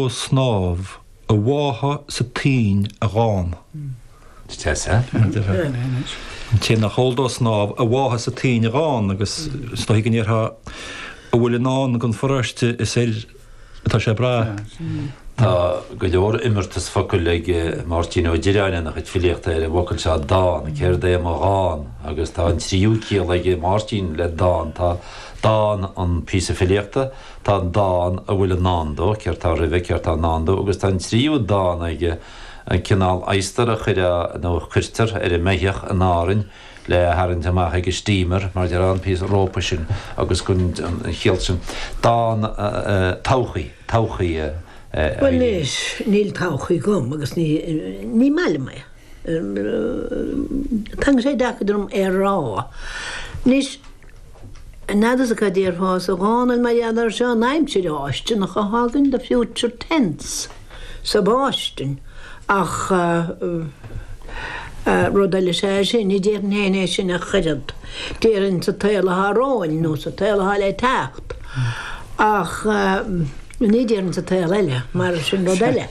snámh a bhá, sé a dhán. an té nach eol dó snámh a bhá, sin é a dhán, agus is dóigh go ndéarfá a bhfuil i ndán don pharóiste is air atá sé ag brath. Tá go leor imeartas focail ag Máirtín Ó Direáin ina chuid filíochta ar an bhfocal seo dán, céard é mo dhán? agus tá an tríú ciall ag Máirtín le dán, tá dán an píosa filíochta, Tá an dán a bhfuil i ndán dó, céard tá roimhe, céard tá i ndán dó, agus tá an tríú dán aige, an cineál adhastair a chuireadh, nó a chuirtear, ar an mbeithíoch in Árainn le tharraingt amach ag an steamer, mar a déarfá, an píosa rópa sin agus an chiall sin. Dán, todhchaí, todhchaí, a Eileen. Bhuel, níl todhchaí agam agus ní maith liom é. Tá sé deacair dom é a rá. Anois. An fhad is atá deoir fása Dhónaill mar gheall air seo, an aimsir fháistineach a thagann, the future tense sa bhfáistine, ach rud eile is ea é sin, ní déarfainn féin é sin ach oiread, déarfainn sa tsaol athá romhainn nó sa tsaol athá le teacht, ach ní déarfainn sa tsaol eile, mar sin rud eile.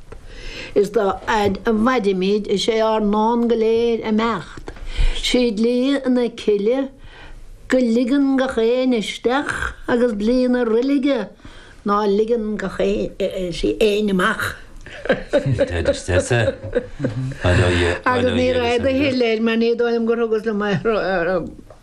Is dá fhaid a mhairimid is é ár ndán go léir imeacht. Sé dlí na cille go ligeann gach éinne isteach agus dlí na roilige ná ligeann sí éinne amach. Agus ní raibh de shil air mar ní dóigh liom gur thugas liom é.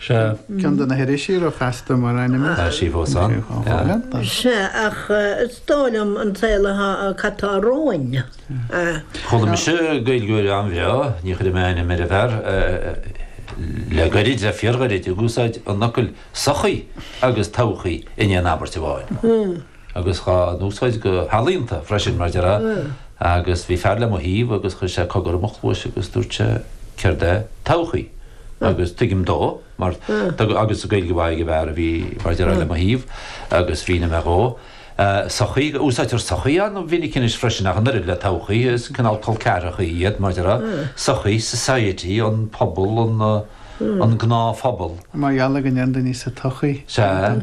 Sea. Ceann de na hirisí ro-chasta mar ainm air. Tá sí fós ann. Sea. Sea, ach is dóigh liom an saol atá, cad tá romhainn, eh. Chuala mise Gaeilgeoir an-bhreá, ní chuirfidh mé ainm ar an bhfear, le gairid, le fíorghairid, ag úsáid an fhocail 'sochaí' agus 'todhchaí' in aon abairt amháin. agus dhá n-úsáid go healaíonta freisin, mar a déarfá, agus bhí fear le mo thaobh agus chuir sé cogar i mo chluais agus dúirt sé, céard é todhchaí? agus tuigim dó, mar tá, agus Gaeilge mhaith ag an bhfear a bhí, mar a déarfá, le mo thaobh, agus mhínigh mé dhó, sochaí, úsáidtear sochaí an-mhinic anois freisin, ach an oiread le todhchaí, is cineál col ceathracha iad, mar a déarfá, sochaí, society, an pobal, an gnáthphobal. Mar gheall ar go ndeireann daoine sa tsochaí. Sea.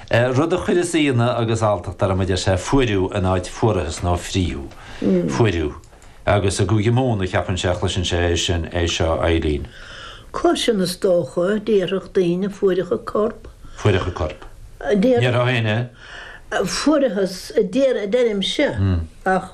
Rud a chuireas ionadh agus alltacht orm a deir sé, fuaireadh in áit fuarathas nó frítheadh, fuaireadh. Agus i gCúige Mumhan a cheapann sé a chloiseann sé é sin, é seo, Eileen. Cloiseann, is dócha, déarfadh daoine, fuaireadh an corp. Fuaireadh an corp. Déarfadh. Ní déarfadh éinne. Fuarathas, deirimse, ach.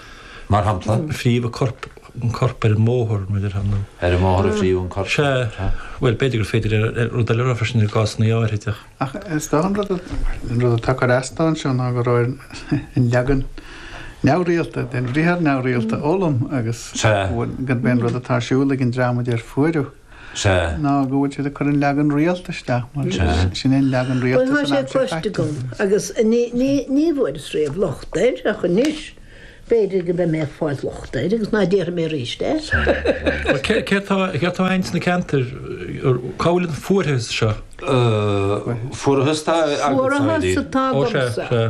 Mar shampla. frítheadh an corp, an corp ar an mbóthar nó ar an. Ar an mbóthar a frítheadh an corp. Sea. Bhuel, b'fhéidir gur féidir rud eile a rá freisin i gcásanna áirithe. Ach is dócha an rud, an rud atá cur as dó anseo ná go raibh an leagan neamhrialta den bhriathar neamhrialta, fhoghlaim, agus. Sea. Gurb é an rud atá ar siúl ag an dream a deir fuaireadh. Sea. ná go bhfuil siad ag cur an leagan rialta isteach mar sin é an leagan rialta san aimsir chaite. Bhuel, tá sé cloiste agam agus ní bhfuaireas riamh locht air, ach anois b'fhéidir go mbeidh mé ag fáil locht air agus ná déarfaidh mé arís é. Sea. Céard atá a'inn sna ceantair, cá bhfuil an fuarathas seo? Fuarathas atá agamsa. Fuarathas atá agamsa. Ó sea.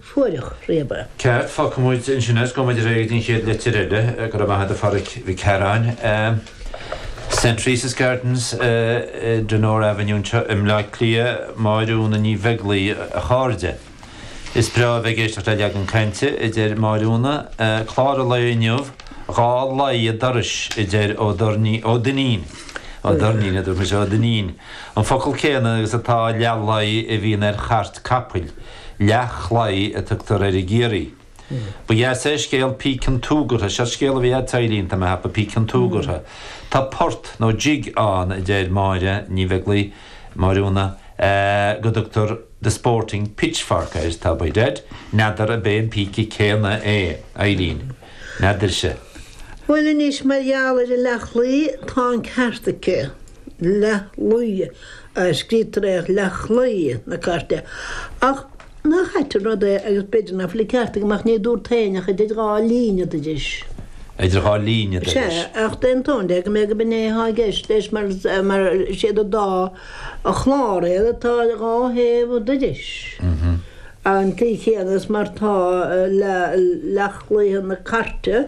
fuair locht riamh air. Ceart, fágfaidh muid ansin é is go mbeidh muid réidh don chéad litir eile? Go raibh maith agat a Pháraic Mhic Shearáin. St Teresa's Gardens, Donore Avenue anseo i mBleá Cliath, Máire Úna Ní Bheaglaoich, a chairde. Is breá a bheith ag éisteacht le Leagan Cainte, a deir Máire Úna. Clár an lae inniu, dhá laí an dorais, a deir Ó Doirnín, Ó Duinnín, Ó Doirnín a dúirt mise, Ó Duinnín, an focal céanna agus atá le laí a bhíonn ar chairt capaill. Leathchlaí a tugtar air i gCiarraí. Ba dheas é scéal Píce an tSúgartha, seo scéal a bhí a'd, Eilín, tá mé ag ceapadh, Píce an tSúgartha. Tá port, nó jig, ann, a deir Máire Ní Bheaglaoich, Máire Úna, eh, go dtugtar The Sporting Pitchfork air, tá a fhios a'd, n'fheadar ab é an píce céanna é, Eilín, n'fheadarsa. Bhuel anois, mar gheall ar an leathchlaí, tá an ceart aici, leathlaí. a scríobhtar ar leathchlaí na cairte, ach nach ait an rud é, agus b'fhéidir nach bhfuil an ceart agam, ach ní dúrt féin ach 'idir dhá líne dorais'. 'Idir dhá líne dorais' Sea, ach d'aontóinn léi go mb'fhéidir gurb in é atá i gceist leis, mar is iad an dá chlár iad atá ar dhá thaobh dorais an chaoi chéanna, is mar atá le leathchlaí na cairte.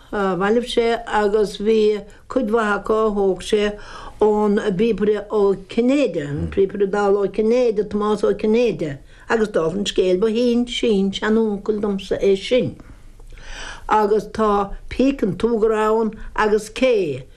bhailigh sé agus bhí cuid mhaith acu a thóg sé ón bpíobaire Ó Cinnéide, an Píobaire Dall Ó Cinnéide, Tomás Ó Cinnéide, agus dála an scéil ba shin-sin-seanuncail domsa é sin. Agus tá Píce an tSúgartha ann agus cé.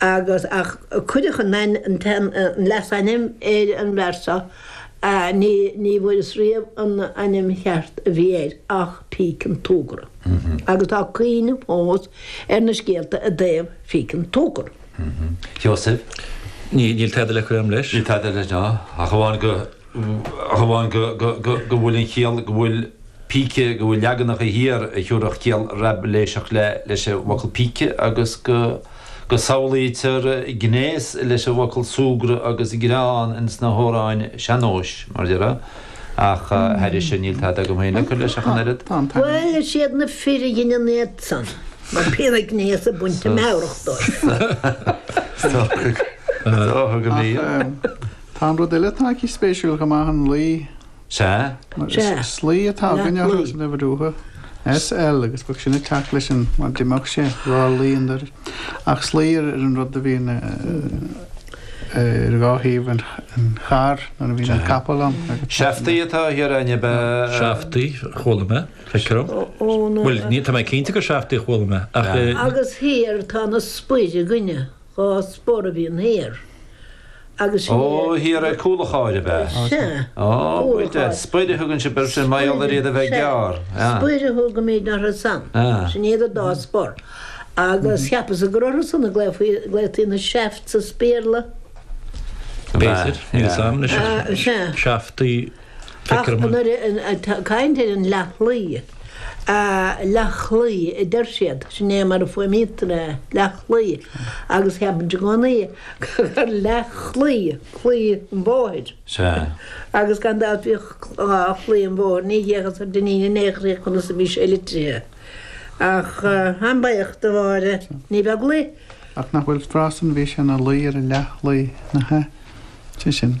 agus ach cuireadh leasainm ar an bhfear seo, ní bhfuaireas riamh an ainm cheart a bhí air ach Píce an tSúgartha, agus tá cuimhne fós ar na scéalta i dtaobh Phíce an tSúgartha. Seosamh. Níl tada le cur a'm leis. Níl tada le rá, ach amháin go. ach amháin go bhfuil an chiall go bhfuil píce, go bhfuil leaganacha thiar a thiúrfadh ciall Raibiléiseach leis an bhfocal píce, agus go samhlaítear gnéas leis an bhfocal súgradh agus greann ins na hamhráin sean-nóis, mar dhea, ach thairis sin níl tada agam féin le cur leis ach an oiread. Bhuel, is iad na fir a dhein an t-éacht san, mar bhí an gnéas ag baint na meabhrach dóibh. Ach, thug an fhírinne. Tá an rud eile atá aici spéisiúil chomh maith, an laí. Sea. Mar slaí atá againn orthu san uimhir uatha, SL, agus bheadh sin ag teacht leis an, mar d'imeodh sé, dhá laí an dorais. Ach slaí ar an rud a bhíonn ar dhá thaobh an chairr nuair a bhíonn an capall ann. Seaftaí atá thiar ann ab ea? Seaftaí, chuala mé, feictear dom. Bhuel, ní, tá mé cinnte gur seaftaí a chuala mé, ach. Agus thiar tá na spoir againne. Dhá spor a bhíonn thiar agus thiar. Ó, thiar ar chúl an chairr, ab ea? Sea. Ó, goide, spoir a thugann sibh ar sin mar gheall ar iad a bheith gearr? Sea. Spoir a thugaimid orthu san. Sin iad an dá spor. Agus cheapas-sa gur orthu san a ghlaotaí na shafts as Béarla? B'fhéidir. Níl 'fhios a'm anois. Sea. Shaftaí. Ach nuair atá caint ar an leathlaí, leathlaí a deir siad, sin é mar a fuaimnítear é, leathlaí, agus ceapaimid i gcónaí gur leathchlaí, claí an bhóthair. Sea. Agus gan dabht bhíodh claí an bhóthair, ní thiocfadh ar d'iníon in aon chor conas a bhí sé litrithe. Ach táim buíoch do Mháire Ní Bheaglaoich. Ach nach bhfuil frása an bhí sé ina luí ar a leathlaí, nach ea? Sé sin.